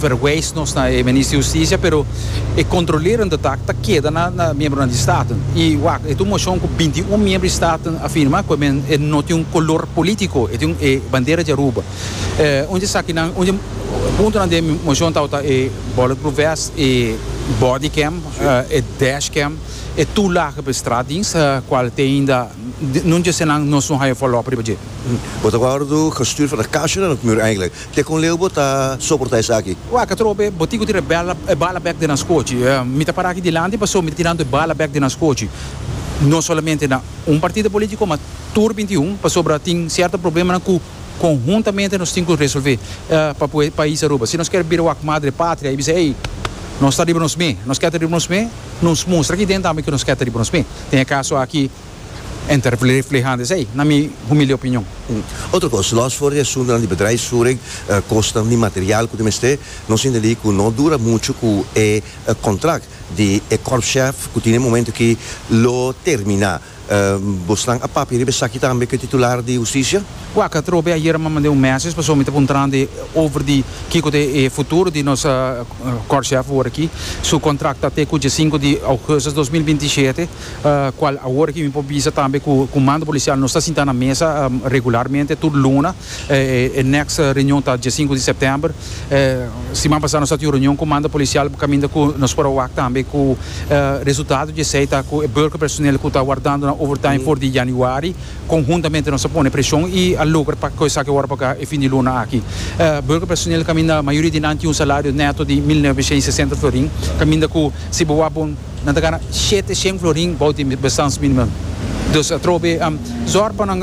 verwijs nos na e Minister di Husticia pero e controlerend di taak ta keda na na miembronan di Staten y wak e ta un moshon cu binti y un miembro di Staten a firma cu men e no tin un color politico e tin e bandera di Aruba un di esakinan un di puntonan den e moshon tabata e bulletproof vest e body cam e dash cam e toelagen pa e straat dins ta cual te ainda no dje esnan nos no haya follow up riba dje. Bo ta worde gestuur van de Caixa na Nocmuur eigenlijk. Te con leu bo ta soporta esaki? Waka tropa e botico tira e bala e bala bek den nan scochi. Mi ta para aki dilanti paso mi ta tirando e bala bek den nan scochi. No solamente na un partido politico ma tur binti i un pasobra tin cierto problemanan cu conhuntamente nos tin cu resolve pa poe pais Aruba. Si nos kier bira wak madre patria y bisa ey nos ta riba nos me, nos kier ta riba nos me, nos mustra aki dentro tambe cu nos kier ta riba nos me. Den e caso aki. Enter Vlieghand is ei, na mi humilde opinion. Otro cos, los for di asuntonan di bedrijf suring, cosnan di material cu tin mester, nos tin de li cu no dura mucho cu e contract di e korpschef cu tin e momento aki lo termina. Bosnan a papia riba esaki tambe cu e titular di Husticia? Wak, a trobe ayer mi a manda un message pasobra mi ta puntranan di over di kico ta e futuro di nos korpschef word aki. Su contract ta te cu dje sinku di augustus dos mil binti shete. Cual awor ki mi por bisa tambe cu Comando Policial nos ta sinta na mesa regularmente tur luna, e next reunion ta dia sinku di September. Siman pasa nos a tin un reunion Comando Policial bo caminda cu nos por a wak tambe cu resultado di esey ta cu e Burger Personeel cu ta wardando nan overtime for di Januari conhuntamente nos a pone presion y a logra pa cu esaki awor paga e fin di luna aki. Burger Personeel caminda mayoria di nan tin un salario neto di mil novecientos y sesenta florin caminda cu si bo wak bo Nan ta gana shete shen florin bou di bestaansminimum. Dus atrobe zòr pa nan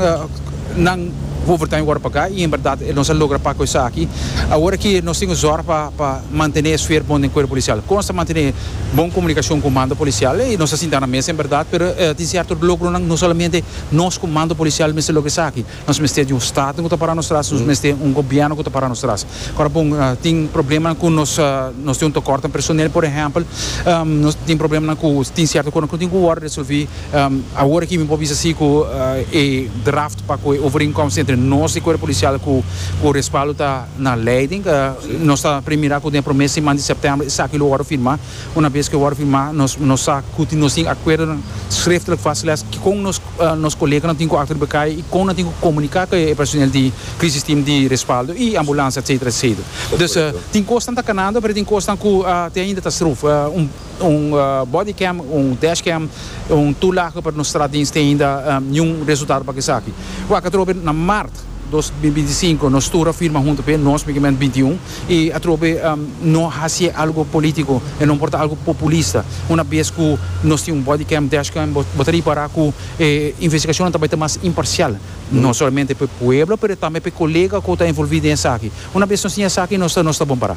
nan overtime wòrdu pagá i en bèrdat nos a logra pak ku esaki. Awor aki nos tin ku zòr pa mantené e sfer bon den kuerpo polisial. Kon nos ta mantené bon komunikashon ku mando polisial? Ei, nos a sinta na mesa en bèrdat, pero tin sierto logronan no solamente nos ku mando polisial mester logra esaki. Nos mester di un staten ku ta para nos tras, nos mester un gobièrnu ku ta para nos tras. Kòrda bon, tin problemanan ku nos nos tin un tokòrt den personel, por ehèmpel. Nos tin problemanan ku tin sierto kosnan ku no tin ku wòrdu resolví. Awor aki mi por bisa si ku e draft pa ku e overeenkomst entre nos di Cuerpo Policial ku ku respaldo ta na leiding. Nos ta prei mira ku den e promé siman di sèptèmber esaki lo wòrdu firmá. Unabes ku e wòrdu firmá nos nos sa ku nos tin akuerdonan sreftelik vastgelegd kikon nos. nos koleganan tin ku akto riba kai i kon nan tin ku komuniká ku e personel di Crisis Team di Respaldo i Ambulansia etsetera etsetera. Dus tin kosnan ta kanando pero tin kosnan ku te ainda ta struf. Un body cam, un dash cam, un tur laga pa nos stratdiens te ainda niun resultado pa esaki. Wak atrobe na mart dos mil binti sinku nos tur a firma huntu p'e nos, migement binti un. i atrobe no hasi e algo politico, e no por ta algo populista. Una bes cu nos tin un body cam dashcam bo ta ripara cu e investigacionnan ta bay ta mas imparcial, no solamente p'e pueblo pero tambe p'e colega cu ta envolvi den esaki. Una bes nos tin esaki nos ta nos ta bon para.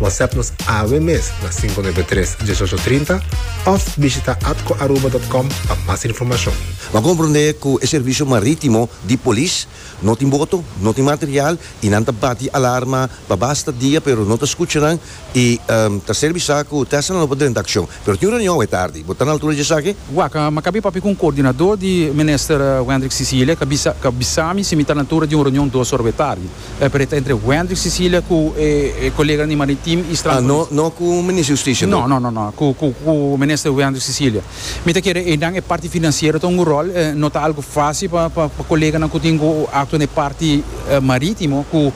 WhatsApp nos awe mes na 593 1830 of bishita atcoaruba.com pa mas informacion. Nan comprende cu e servicio maritimo di polis no tin boto, no tin material y nan ta bati alarma pa basta dia pero no ta scucha nan y ta ser bisa cu Tessalan lo por drenta accion. Pero tin un reunion awe tardi. Bo ta na altura di esaki? Wak, mi cabia papia cu un coordinador di Minister Wendrick Cecilia, ca bisa mi si mi ta na altura di un reunion dos ora awe tardi. E preta entre Wendrick Sicilia cu e colega di Maritim y Strand Police. Ah, no, no cu Minister Justicia bo? No, no, no, no, cu, cu, cu Minister Wendrick Sicilia. Mi ta kere einan e parti financiero ta un go rol, eh, no ta algo facil pa, pa, pa coleganan cu tin go actua na e parti, eh, maritimo cu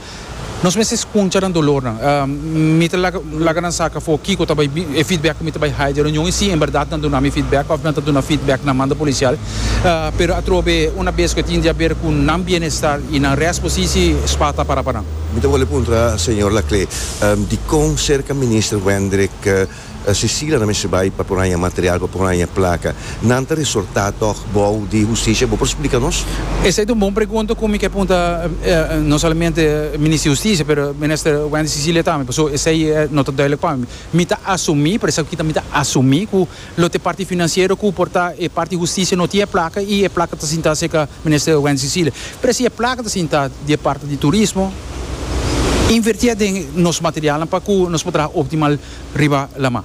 nos mester scunsha nan dolornan. Ah, mi ta laga, laga nan saca afo kico ta bay, e feedback cu mi ta bay hay di e reunion y si en berdad nan duna mi feedback of nan ta duna feedback na mando policial. pero atrobe una bes cu e tin di haber cu nan bienestar y nan rest posisi, spa ta para pa nan. Mi ta wòrdu puntra señor Laclé, dicon cerca Minister Wendrick Cecilia ta mester bai pa por haña material, pa por haña placa? Nan ta resortá tòg bou di Husticia? Bo por splica nos? Esei ta un bon pregunta cu mi ke punta no solamente Minister di Husticia, pero Minister Wendrick Cecilia tambe, pasobra esei no ta duidelijk pa mi. Mi ta asumí, por esaki ta mi ta asumí cu Lo t'e parti financiero cu por ta e parti husticia no tin e placa y e placa ta sinta cerca minister Wendy Cecilia. Pero si e placa ta sinta di e parti di turismo, inverti a den nos materialnan pa cu nos por traha optimal riba laman.